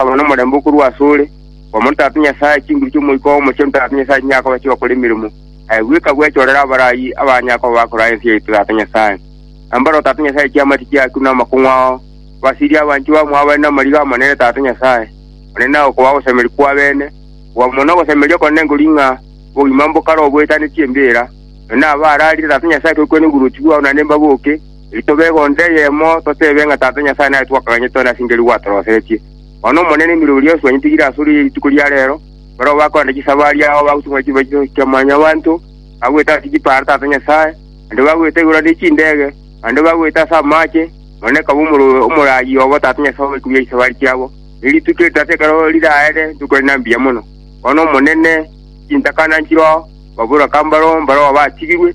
Okoba nomorembe okorwa asore, kwamo ntato Nyasae, chinguru chi'omoika oo mochie ntato Nyasae chinyakoba chigakora emeremo, aye bweka gwechorere abarai abanyakoba bakoraa ense yaito Tata Nyasae. Nambare o Tata Nyasae chiamati chiaku na amakong'u ao, obasirie abanchwa bamo abare namariga amanene Tata Nyasae, one na okoba ogosemeria kw'abene, okwamwo na ogosemeria okonene nkori ng'a obogima mbokare oboetane chi'embeera, nonya nabaararire Tata Nyasae tokwene oboruoti bwao naende mbaboke, Ntobe egonto eyemo, toteebe ng'a Tata Nyasae nare twakaganyete one ase enchera nigo gwatoroseretie. Nonya n'Omonene emirimo eria yonsi bwanyetigire ase ore rituko ria reero, barabwo bakorenta chisabari yao, bagotumana chibachi chionsi chia mwanyabanto, bagwete ase chipara Tata Nyasae, naende bagwete igoro ande chindege, naende bagwete ase amaache, Monene kabe omorobe omoraai obo Tata Nyasae obe kobua chisabari chiabo. Ne rituko eri Tata ekero riraere, rituko rinde mbuya mono. Bono Omonene, chintakana nchiroao, baborwe aka mbaro, mbaro abaatigirwe,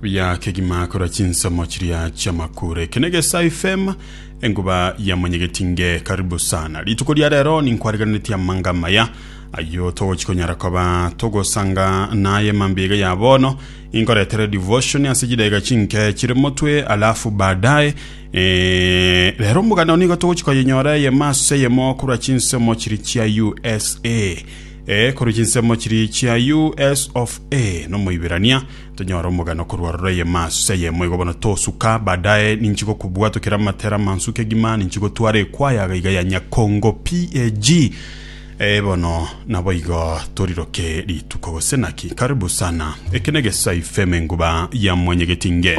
Bia kegima korwa chinsomo chiria chi'amakure. Eke negesae FM, enguba ya monyegeti nge karibu sana. Rituko ria rero ninkwareganeretie amanga amaya ayio togochi konyara koba togosanga naye mambia iga ya bono. Inkoretere devotion ase chidaiga chinke chire motwe alafu baadaye eh, rero omogano nigo togochi koyenyora eyemo ase eyemo korwa chinsomo chiri chia USA. Eh, korwa chinsomo chiri chia US of A nomoibirania Tonyore omogano korwa aroro eyemo ase eyemo igo bono tosuka, baadaye ninchi gokobwatokera amatera amansuke egima ninchi gotwara ekwayaga iga ya Nyakongo PAG eh, bono naboigo toriroke rituko gose naki. Karibu sana. Eke negesaife emenguba ya Mwanyegetinge.